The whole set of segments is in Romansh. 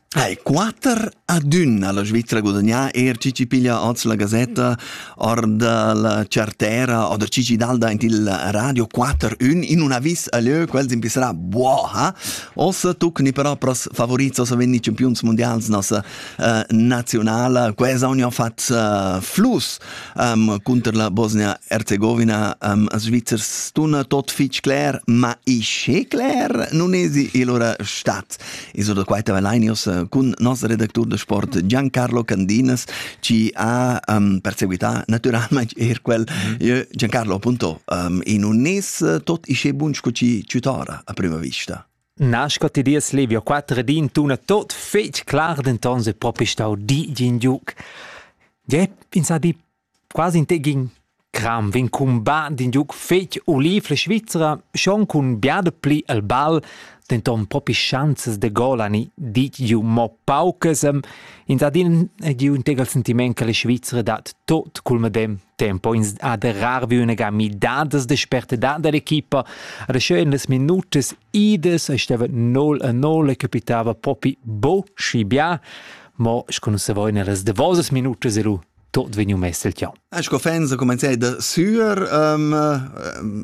Hai, quater ad ün alla Svizzera gudagnà er chi chi piglia oz la Gazetta or da la Chartera oder chi chi dalda in il radio quater ün in un avis a lieu quels in pisserà buoha ossa tuc ni però pros favorits ossa venni campiuns mundials nossa uh, nazionala quesa union fat uh, flus um, cunter la Bosnia-Herzegovina um, svizzers tuna tot fitg cler, ma isce cler non esi il ora stat. Iso da quaita Valanios eh, cun nos redactur de sport Giancarlo Candinas ci ha um, perseguita naturalmente er quel mm -hmm. Giancarlo appunto um, in un nes tot isce bun sco ci tutora a prima vista. Nasco ti dies levio quatter ed in tuna tot fetg clar, denton se propi stau di gin giuc. Gie, in sa di quasi in tegin cram vegn cumbat d'in giuc fetg olivle svizzera, schon cun biada pli al ball, denton propi schanzas de gol ani dit giu mo paucas. Ins ha din giu in tegel sentiment che la Svizzera dat tot cul medem tempo ins ha derrar vi üna ga midadas de spertedad dell'equipa ad scheu in las minutas idas stava nol a nol e capitava propi bo schi bia mo sco non savoi nellas davosas minutas e lu tot vegniu mess el tian. Sco fans comenzai da suer, um,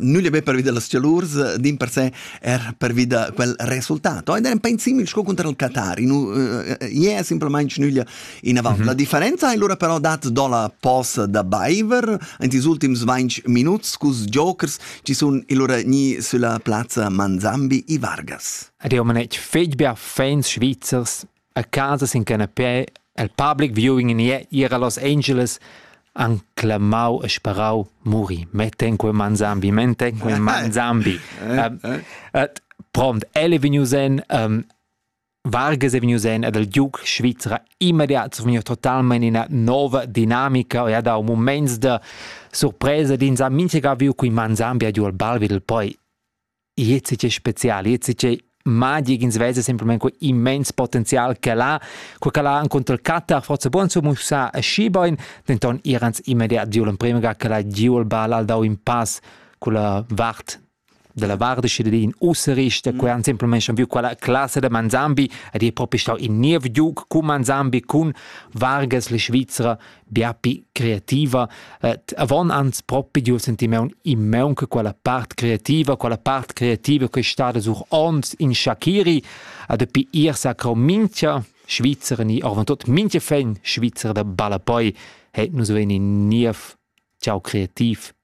nulla be pervi dellas tialurs, din per se er pervi da quel resultato. Ed era un pegn simil sco contro il Qatar. In, uh, iea simplemain nulla Inavant, mm -hmm. la differenza è lura però dat do la posa da baiver in ils ultims 20 minuts cus jokers ci sun lura ni sulla plazza Manzambi i Vargas. Ed io man etg fetg bia fans svizzers a casa sin canapé el public viewing in era Los Angeles an clamau e sparau muri. Meten quel Manzambi, meten quel Manzambi. um, uh, prompt, ele vegnu sen um, Vargas è vegnius en ed il giug svizra immediat survegniu totalmein ina nova dinamica e ha dau muments da surpresa ed ins ha mintga viu cun man Zambia giu al bal vid il poi. Gliez è spezial, gliez è magic, ins vesa semplamain quei immens potenzial che l'ha, co che l'ha contro il Qatar, forse buon su musa aschi bein, denton irans immediat giu l'emprema ga che l'ha giu il bal, ha dau in pass culla vart dalla vart cittadin ussa resta quei han semplamain viu quella classa da Manzambi ed è propi stau in niev giug cun Manzambi cun Vargas la Svizzera bia pi creativa et avon ans propi giu sentimeun immeun che quella part creativa quella part creativa che è stada sur ons in Shakiri ad pi ir sacro minchia Svizzer ni orvan tot minchia fen Svizzer da balla poi het nus veni niev ciao creativ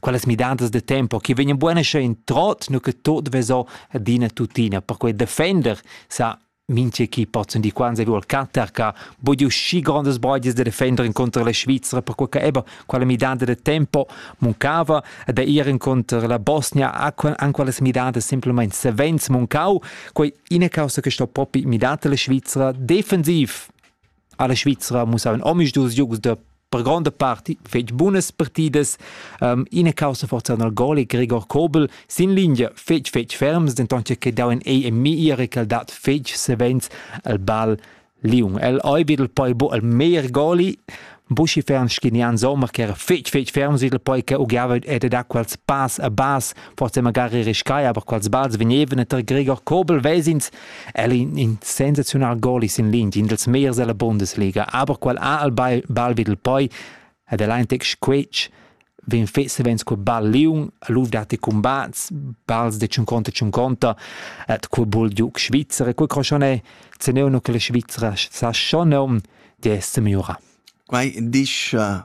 quellas midadas de tempo che vegnan buone schön trot nu che tot veso adina tutina per quei defender sa minche chi pozzun di quansa vuol cattar ca bodio schi grandes brogis de defender incontra la Svizzera per quel che eba quella midada de tempo muncava da ir incontra la Bosnia an quelles midadas simplemente savens muncau quei ina causa che sto propi midata la Svizzera defensiv Alla Svizra mussavan omisdus giugs da per gronda parti fetg bunas partidas. Um, ina caussa forza nel gol è Gregor Kobel sin linea fetg fetg ferms, denton che dau en ei e mi era che dat fetg savens el ball Liung. El ei bidel poi bo el meir goli Buschi fern schinian sommer che era fetg fetg ferm sil poi che ugiava ed da quels pass a bas forse magari riscai aber quels balls vegnevan tar Gregor Kobel vesins El in, in sensaziunal gol sin linea, in dels meiers della Bundesliga, aber qual ha al ball, ball vid il poi ed el ein tec squetsch vegn fet savens col ball liung, luf dat combats, balls de 50 50, et quel bol giuc Schweizer e quel croschon è zeneu no che la Svizzera sa schon nom di essere miura. Quai disch uh,